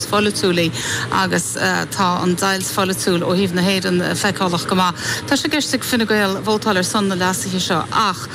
pholaitiúil í agus tá an deighilt pholaitiúil ó thaobh na hÉireann feiceálach go maith. Tá sé i gceist ag Fine Gael vótáil ar son na leasuithe seo ach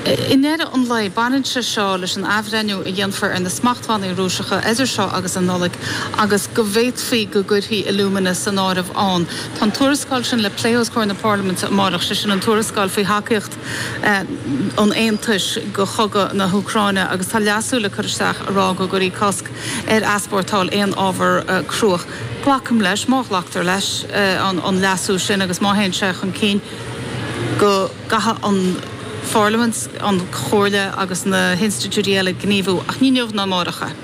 i ndeireadh an lae baineann sé seo leis an athbhreithniú a dhéanfar ar na smachtbhannaí Rúiseacha idir seo agus an Nollaig agus go bhféadfaí go gcuirfí alúmana san áireamh ann. Tá an tuarascáil sin le plé os comhair na Parlaiminte amárach, sé sin an tuarascáil faoi thacaíocht an Aontais do chogadh na hÚcráine agus tá leasú le cur isteach a rá go gcuirfí cosc ar easpórtáil aon ábhar cruach. Glacaim leis, má ghlactar leis an leasú sin agus má théann sé chun cinn, go gcaithfidh an Pharlaimint, an Chomhairle agus na hinstitiúidí eile gníomhú, ach ní inniu ná amárach é.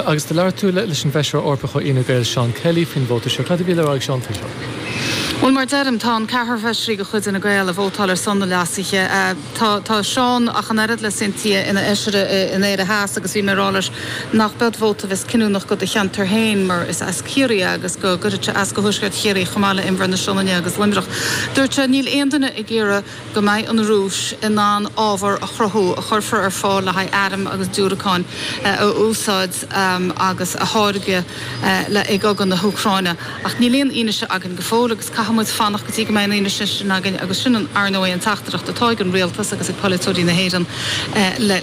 Agus do labhair tú leis an bhFeisire Eorpach ó Fhine Gael, Seán Kelly, faoin vóta seo. Cad a bhí le rá ag Seán faoi seo? Bhuel, mar a deirim, tá an ceathrar Feisirí de chuid Fhine Gael ag vótáil ar son na leasuithe. Tá Seán ach an oiread le Cynthia ina Fheisire in Éire Theas agus bhí mé ag rá leis nach b'ea vóta a bheas cinniúnach do do cheantar féin mar is as Ciarraí é agus go gcuirfeadh sé as do Thuaisceart Chiarraí chomh maith le Inbhear na Sionainne agus Luimneach. Dúirt sé, níl aon duine ag iarraidh. go mbeidh an Rúis in ann ábhar a chruthú a chuirfear ar fáil le haghaidh airm agus diúracáin a úsáid agus a tháirgeadh i gcogadh na hÚcráine. Ach níl aon fhianaise againn go fóill agus caithfidh muid fanacht go dtí go mbeidh an fhianaise sin againn agus sin, ar ndóigh, an teachtaireacht atá ag an Rialtas agus ag polaiteoirí na hÉireann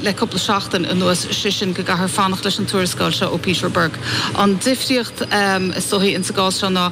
le cúpla seachtain anuas, sé sin go gcaithfear fanacht leis an tuarascáil seo ó Peter Burke. An difríocht, is dóichí, sa gcás seo ná.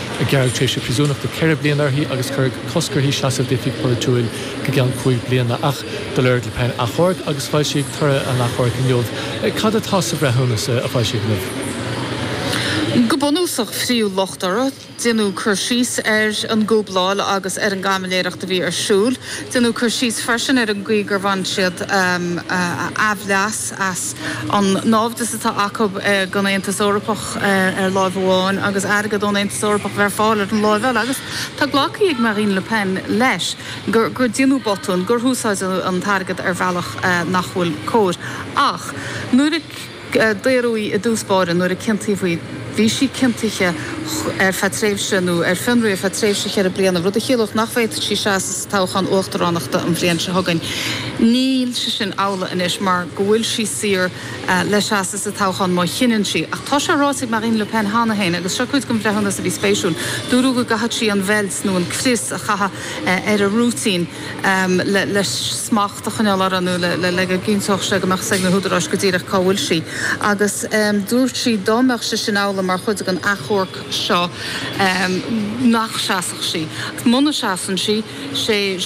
Gearradh tréimhse príosúnachta ceithre bliana uirthi agus cuireadh cosc uirthi seasamh d'oifig pholaitiúil go ceann cúig bliana. Ach do lorg Le Pen achomharc agus foilsíodh toradh an achomhairc inniu. Cad atá sa bhreithiúnas a foilsíodh inniu? Go bunúsach, frítheadh locht uirthi. Déanadh cur síos ar an gcúbláil agus ar an gcaimiléireacht a bhí ar siúl. Déanadh cur síos freisin ar an gcaoi gur bhain siad aimhleas. as an náimhdeas atá acu don Aontas Eorpach ar láimh amháin agus airgead ón Aontas Eorpach a bheith ar fáil ar an láimh eile. Agus tá glactha ag Marine Le Pen leis gur déanadh botún, gur húsáideadh an t-airgead ar bhealach nach bhfuil cóir. Ach nuair a daoradh í i dtús báire, nuair a ciontaíodh í, bhí sí ciontaithe ar feadh tréimhse nó ar fionraí ar feadh tréimhse cheithre bliana, rud a chiallódh nach bhféadfadh sí seasamh sa toghchán uachtaránachta an bhliain seo chugainn. Níl sé sin amhlaidh anois mar go bhfuil sí saor le seasamh sa toghchán má chinneann sí. Ach tá sé ráite ag Marine Le Pen cheana féin, agus seo cuid den bhreithiúnas a bhí spéisiúil, dúradh go gcaithfeadh sí an bheilt nó an crios a chaitheamh ar a rúitín, le smacht a choinneáil uirthi nó le go gcinnteodh sé go mbeadh 's ag na húdaráis go díreach cá bhfuil sí agus dúirt sí dá mbeadh sé sin amhlaidh mar chuid den achomharc seo nach seasfadh sí agus muna seasann sí sé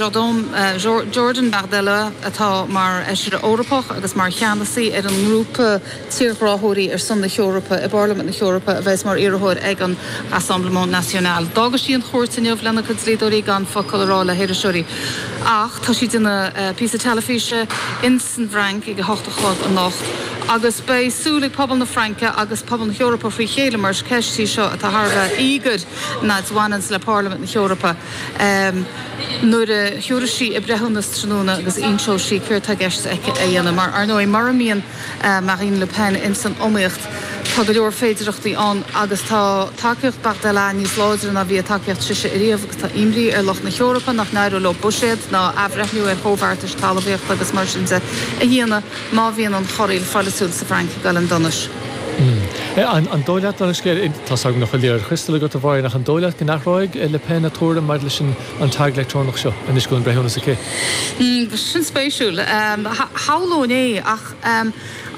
Jordan Bardella atá mar Fheisire Eorpach agus mar cheannasaí ar an ngrúpa tírghráthóirí ar son na hEorpa i bPairlimint na hEorpa a bheas mar iarrthóir ag an Rassemblement National. D'fhága sí an chúirt inniu lena cuid dlíodóirí gan focal a rá le hiriseoirí. Ach tá sí ag déanamh píosa teilifíse ins an bhFrainc ag a hocht a chlog anocht agus beidh súil ag pobal na Fraince agus pobal na hEorpa fré chéile mar is ceist í seo atá thar a bheith íogair an fhad a bhaineanns le Pairlimint na hEorpa. Nuair a thiúras sí a breithiúnas tráthnóna agus inseoidh sí céard tá i gceist aici a dhéanamh mar, ar ndóigh, mura mbíonn. Marine Le Pen ins an iomaíocht. Tá go leor féidearthachtaí ann agus tá tacaíocht Bardella níos láidre ná bhí a tacaíocht sise ariamh agus tá imní ar lucht na hEorpa nach n-éireoidh leo buiséad ná athbhreithniú ar chomhbheartais talmhaíochta agus mar sin de a dhéanamh má bhíonn an chorraíl pholaitiúil sa bhFrainc ag dul in donais. An dóigh leat, anois tá a fhios agam nach bhfuil liathróid chriostail agat a Mháire, ach an dóigh leat go n-athróidh Le Pen a tuairim maidir leis an. an tag leictreonach seo anois go bhfuil an breithiúnas aici. Sin spéisiúil. Shamhlóinn é ach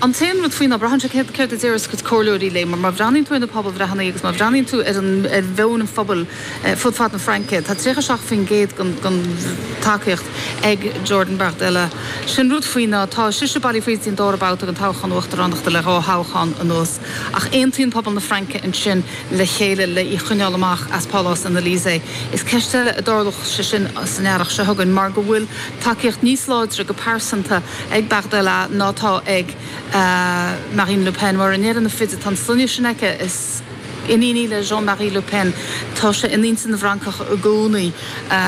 an t-aon rud faoi ná braitheann sé céard a déarfas a cuid comhairleoirí léi mar má bhreathnaíonn tú ar na pobalbhreitheanna agus má bhreathnaíonn tú ar mheon an phobail fud fad na Fraince, tá 37% den tacaíocht ag Jordan Bardella. Sé an rud faoi ná tá sise bailithe fríd an dara babhta den toghchán uachtaránachta le dhá thoghchán anuas. Ach aontaíonn pobal na Fraince ansin le chéile le í a choinneáil amach as Pálás an Elysée. Is ceist eile an dtarlódh sé sin san earrach seo chugainn mar go bhfuil tacaíocht níos láidre go pearsanta ag Bardella ná atá ag Marine Le Pen. Mar i ndeireadh na feide, tá an sloinne sin aici, is iníon í le Jean Marie Le Pen, tá sé in intinn na bhFrancach i gcónaí.